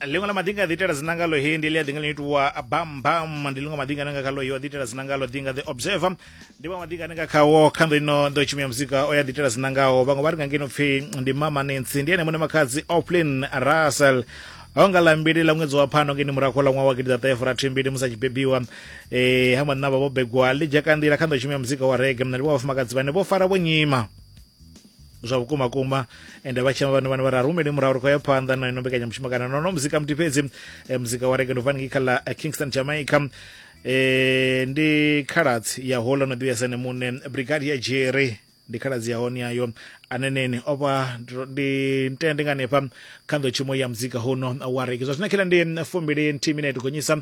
ḽiṅwe ḽa maḓi nga ḓiitela dzina ngalo he ndi ḽi a ḓi nga ḽi itiwa bambam ndi ḽiṅwe maḓi ngane nga kha loyo a ḓiitela dzina ngalo ḓi nga the observer ndi vha maḓi ngane nga khawo kha ndo ino ndo tshumi ya muzika o ya ḓiitela dzina ngaho vhaṅwe vha ri nga ngeno pfhi ndi mama nancy ndi ene muṋe makhadzi oplin russell ho nga ḽa mbili ḽa ṅwedzi wa phano ngeni murahu ḽa ṅwaha wa gidiḓaṱahefurathimbili musi a tshi bebiwa um ha mannavha vho begwa ḽi dzhaka nḓila kha ndo tshumi ya muzika wa rege mna ndi wa vhafumakadzi vhane vho fara vho nyima zwa vhukuma kuma ende vha tshema vhana vhana vha ra rumele murahu ri khou ya phanḓa na ino mbekanyamushumo kana nono muzika muthi fhedzi eh, muzika wa rege ndovani kha ḽa eh, kingston jamaica eh, ndi khaladzi ya hola no ḓivhesa ne muṋe brigade ya jerry ndi khaladzi ya hone yayo aneneni o vha ndo- ndi ntende nga hanefha kha nḓowetshumo ya muzika huno wa rege zwa zwino khela ndi fumbili nthihi minete gonyisa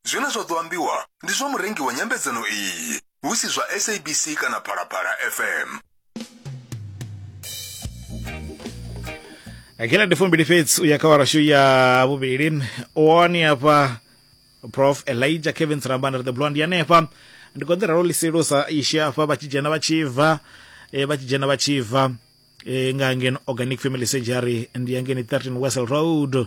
Zwine zwa ḓo ambiwa ndi zwa murengi wa nyambedzano iyi, hu si zwa SABC kana Phalaphala FM. kila ndi fumbili fhedzi u ya kha warashu ya vhuvhili wani hafha prof elijah kevin sirambana ri the blond yanefha ndi khou ḓi ralo ḽisilusa ishi hafha vha tshi dzhena vha tshi bva eh, vha tshi dzhena vha tshi bva eh, nga ngeno organic family surgery ndi ya ngeni 13 wessel road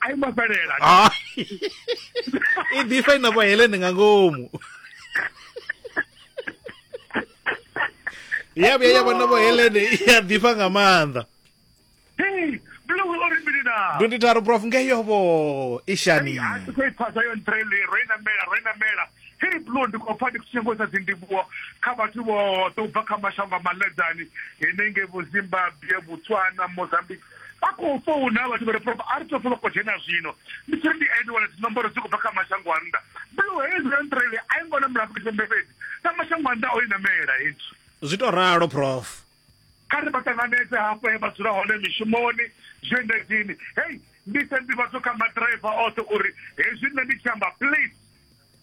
a i ngo fhelela Ah. i ḓifha i na vhahelene nga ngomu ya vhuya ya vha na vhahelene i a ḓifha nga maanḓa Hey, bula wo ri mini na ndundi tharu prof ngeyovo i shani a ti khou i phasa yo ntrele ro i namela ro i namela hei blo ndi khou pfa ndi khou nyangisa dzindivhuwo kha vhathu vhoṱhe u bva kha mashango a maḽedzani henengei vho zimbabwe botswana mozambique vha khou founa vhathu vha ri prof a ri to folo dzhena zwino ndi tshiri ndi ene wana dzinomboro dzi khou bva kha mashango a nnḓa blue haze ventrele a i ngona mulaafrika tshipembe fhedzi na mashango a nnḓa o i namela hezwi zwi to ralo prof kha ri vha ṱanganedze hafho he vha dzula hone mishumoni zwiendedzini hei ndi se ndivhadzo kha maḓiraiva oṱhe uri hezwi nṋe ndi tshi amba please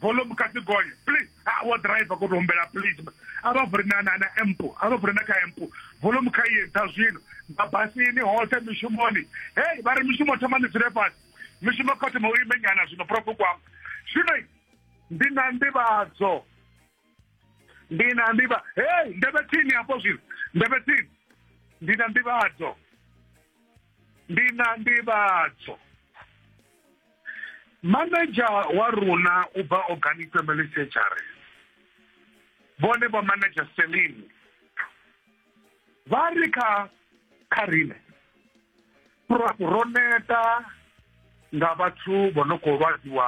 volume kha dzi gonye please a ah, wo driver ko to humbela please a vha vuri na na na empo a vha vuri na kha empo volume kha ye dza zwino mabasini hoṱhe mishumoni hey vha ri mishumo thoma ni dzule fhasi mishumo kha thoma u imenyana zwino profe kwam zwino ndi na ndivhadzo ndi na ndivha hey ndebe tsini hafho zwino ndebe tsini ndi na ndivhadzo ndi na ndivhadzo Manager wa runa u bva Organic Family Surgery vhone vho manager Celine vha ri kha kha rine ro neta nga vhathu vho no khou lwadziwa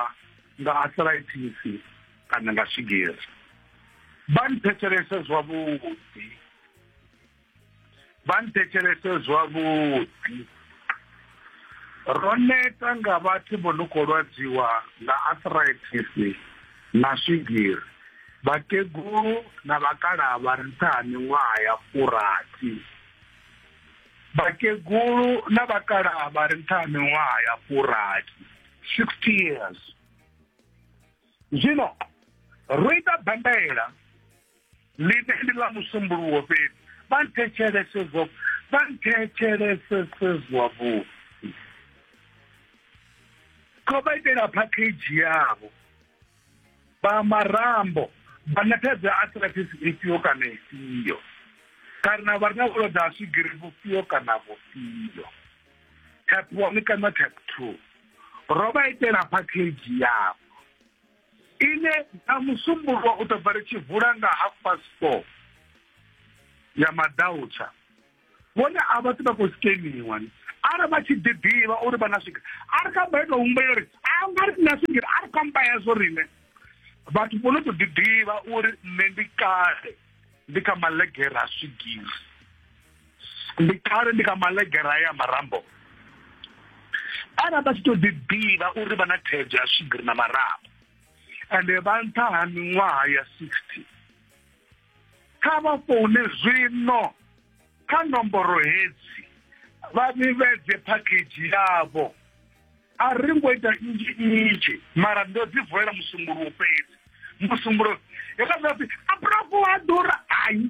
nga arthritis kana nga swigiri vha nthetshelese zwavhuḓi vha nthetshelese zwavhuḓi ro neta nga vhathu vho no khou lwadziwa nga arthritis na swigiri vhakegulu na vhakalaha vha re nṱha ha miṅwaha ya furathi vhakegulu na vhakalaha vha re nṱha ha miṅwaha ya furathi 60 years zwino ro ita bandaela ḽine ndi ḽa musumbuluwo fhedzi vha nthetshelese zwa vha nthetshelesese zwavhuḓi kho vha itela package yavho vha marambo vha na thaidzo ya arthritis ifhio kana ifhio kana vha re na vhulwadze ha swigiri vhufhio kana vhufhio type one kana type two ro vha itela package yavho ine na musumbulwa u ḓo bva ri tshi vula nga half past four ya madautsha vhone a vha tsi vha khou sikeniwa arali vha tshi ḓiḓivha uri vha na swigiri a ri kha baita humbulela uri a nga ri na swigiri a ri kha mba yazwo riṋe vhathu vho no tou ḓiḓivha uri nṋe ndi kale ndi kha malegere a swigiri ndi kale ndi kha malegera ya marambo arali vha tshi to ḓi ḓivha uri vha na thaidzo ya swigiri na marambo ende vha nṱha ha miṅwaha ya sixty kha vha foune zwino kha nomboro hedzi vha vhivhedze phakhedzhi yavho a ri ngo ita nnzhi nnzhi mara ndo dzi vulela musumbulowo fhedzi musumbulo hekazwapfi abrafu a ḓura hayi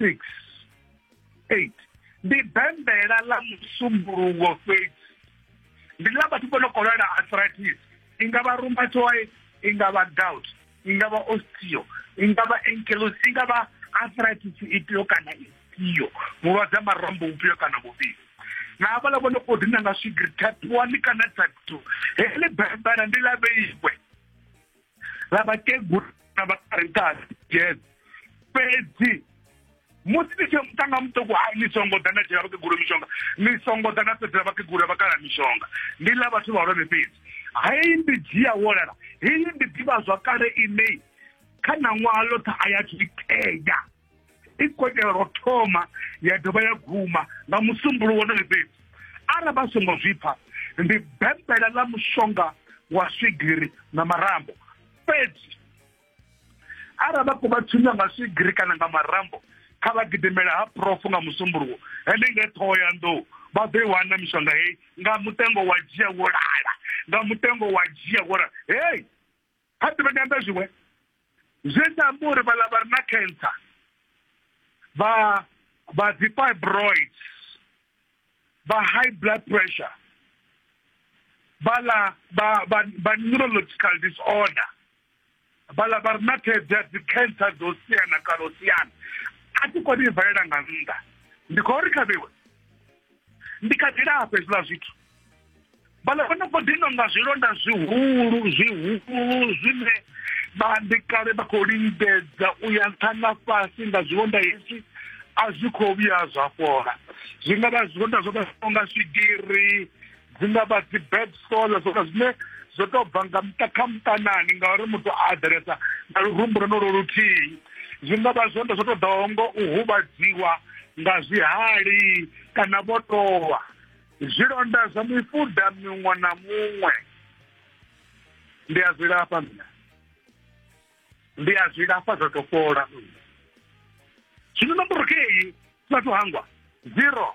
6 8 ndi bembela ḽa musumbuluwo fhedzi ndi ḽa vhathu vho no khou lwala arthritis i nga vha rheumatoid i nga vha gout i nga vha osteo i nga vha ankylosing i nga vha arthritis ifhio kana ifhio vhulwadze ha marambo vhufhio kana vhufhio na havhaḽa vho no khou dina nga swigiri type one kana type two heḽi bembela ndi ḽa vheiwe na vhakegulu na vhakarentasi jazz fhedzi musi ni tshi mutanga muṱuku ha ni songo ḓa na dzhela vhakegulu mishonga ni songo ḓa na fhedzela vhakegulu vhakala mishonga ndi ḽa vhathu vhahulwane fhedzi hei ndi dzhia wolala hei ndi ḓivha zwakale inei kha ṋaṅwaha ḽoṱhe a ya zwi itea i kotela ro thoma ya dovha ya guma nga musumbulu wonoyo fhedzi ara vha songo zwi pfa ndi bembela ḽa mushonga wa swigiri na marambo fhedzi ara vha khou vha thunya nga swigiri kana nga marambo kha vha gidimela ha profu nga musumbuluwo henenge ṱhoho ya nḓou vha ḓo i wana mishonga heyi nga mutengo wa dzhia wo lala nga mutengo wa dzhia wo lala heyi ha ḓi vha nyanda zwiṅwe zwi tshi amba uri vhaḽa vha re na cancer vha vha dzi fibroids vha high blood pressure vhaḽa vha vha neurological disorder vhaḽa vha re na thaidzo ya dzi cancer dzo siana kana u siana a thi koni i valela nga nnḓa ndi khou ri khavhiwe ndi kha ḓi lafha hezwiḽa zwithu vhala vha noko ḓi nonga zwilonda zwihulu zwihulu zwine vha ndi kale vha khou lingedza u ya nṱha na fhasi nga zwilonda hezwi a zwi khou vhuya zwa fhola zwi nga vha zwilonda zwo vha nga swigiri dzi nga vha dzi bad sola zwoka zwine zwo to bva nga muṱa kha muṱanani ngauri muthu a aḓelesa na lurumbu lwonolo luthihi zwi nga vha zwonda zwo to ḓaho ngo u huvhadziwa nga zwihali kana vho towa zwilonda zwa mifuda miṅwe na muṅwe ndi a zwi lafha mina ndi a zwi lafha zwa to fhola zwino nomboro kei vhathu hangwa zero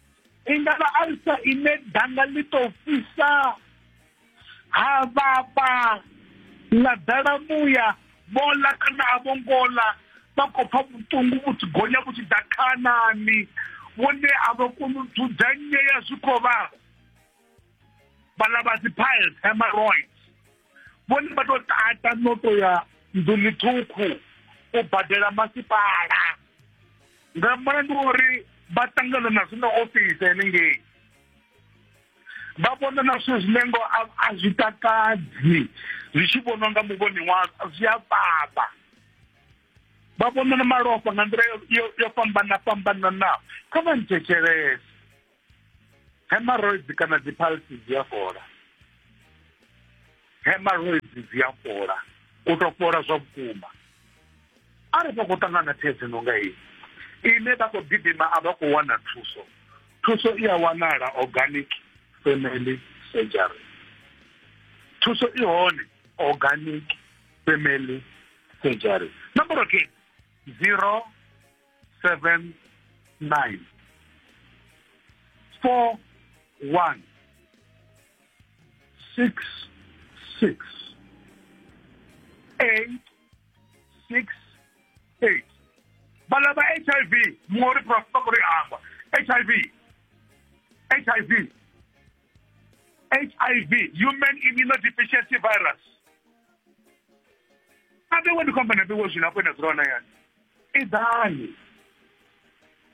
i ngavha alisa ine danga ḽi tou fhisa ha vhafha ḽa ḓala muya vho ḽa kana a vho ngo ḽa vha khou pfa vhuṱungu vhu tshi gonya vhu tshi ḓa khanani vhone a vha koni u dzudzanyea zwi khou vhavha vhala vha dzi piles hemorrhoids vhone vha tou tata no to ya nḓuni ṱhukhu u badela masipala nga mulandu wa uri vha ṱangana na zwine ofisi henengei vha vhona na zwithu zwine ngo a zwi takadzi zwi tshi vhonwa nga muvhoni wa zwi a vhavha vha vhona na malofha nga nḓila yo fhambana fhambananaho kha vha nthetshelese hemorrhoids kana dzi pulse dzi a fhola hemorrhoids dzi a fhola u to fhola zwa vhukuma a ri vha khou ṱangana thaidzo no nga iyi ine vha khou gidima a vha khou wana thuso thuso i a wanala organic family surgery thuso i hone organic family surgery nomboro ke zero seven nine four one six six eight six eight vhala vha h i v muṅwe uri profesa kuri amba h i v h i v h i v human immunodeficiency virus a vhewe ndi khou amba na vhewe zwino afho ina dzula hone hayani Idani.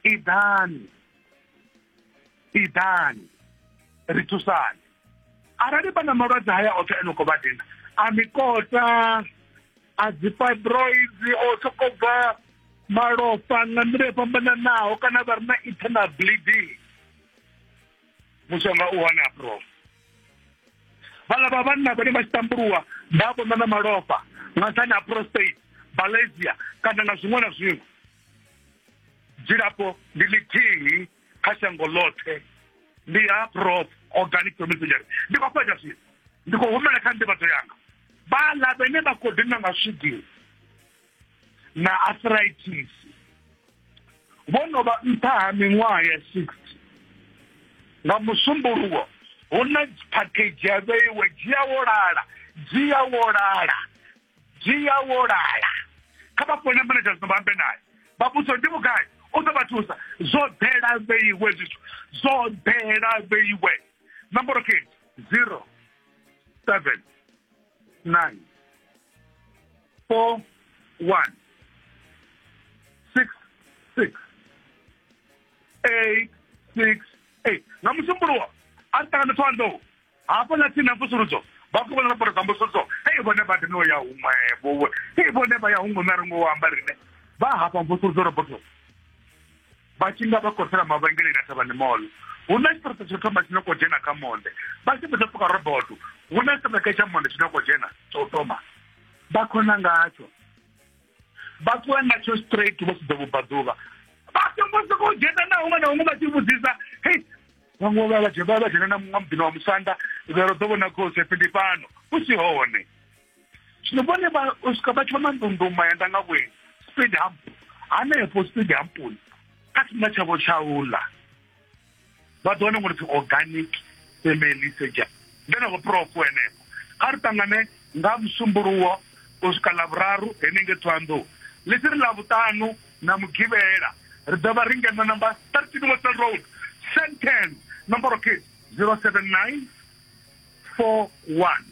Idani. Idani. Ri thusane. Arali vha na malwadze haya oṱhe a no khou vha dina, a mikota, a dzi fibroids, o sokou bva malofha nga nḓila yo fhambananaho kana vha re na internal bleeding. mushonga u hone a prof vhala vha vhanna vhane vha tshi tambuluwa vha a vhonwa na malofha nga nṱhani ha prostate balasia kana na zwiṅwe na zwiṅwe dzilafho ndi ḽithihi kha shango ḽoṱhe ndi ha prof organic domestic ndi khou fhedza zwino ndi khou humela kha nḓivhadzo yanga vhala vhene vha khou dina nga swigiri na arthritis vho no vha nṱha ha miṅwaha ya 60 nga musumbuluwo hu na phakhedzhi ya vheiwe dzhia wo lala dzhia wo lala dzhia wo lala kha vha fone manager zwino vha ambe naye vha vhudza ndi vhugai u ḓo vha thusa zwo ḓela vheiwe zwithu zwo ḓela vheiwe nomboro khe zero seven nine four one six six eight six eight nga musumbulo wa a ri ṱangane thoanḓou hafho na tsini na mvusuludzo vha khou vhona laporo dza mvusuludzo hei vhone vha dino ya huṅwevho hei vhone vha ya huṅwe na ringo wa amba rine vha hafha mvusuludzo roboto vha tshi nga vha khosela mavhengeleni a thavhani molo hu na tshiṱirata tsho thoma tshine khou dzhena kha monde vha tshi fhedza pfuka roboto hu na tshiṱirata tsha monde tshine khou dzhena tsha u thoma vha khona ngatsho vha ṱuwa ngatsho straight vho sudza vhubvaḓuvha vha songo sokou dzhena na huṅwe na huṅwe vha tshi vhudzisa hei vhaṅwe vha vha dzhena na muṅwe muḓini wa musanda vhero ḓo vhona khosi phi ndi fhano hu si hone zwino vhone vha swika vha tshi vha mandunduma ya ndanga vhueni speed hump hanefho speed hampuni kha tshifhinga tshavho tsha ula vha ḓo wana ngolipfi organic family surgery ndeneko prof henefho kha ri ṱangane nga musumbuluwo u swika ḽavhuraru henenge thoanḓou ḽi si ri ḽavhuṱanu na mugivhela ri ḓo vha ri ngeno number 13 wesel road sentence nomboro ke 079 41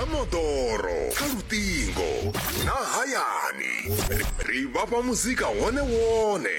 kha moḓoro kha luṱingo na hayani ri vhafha muzika wone wone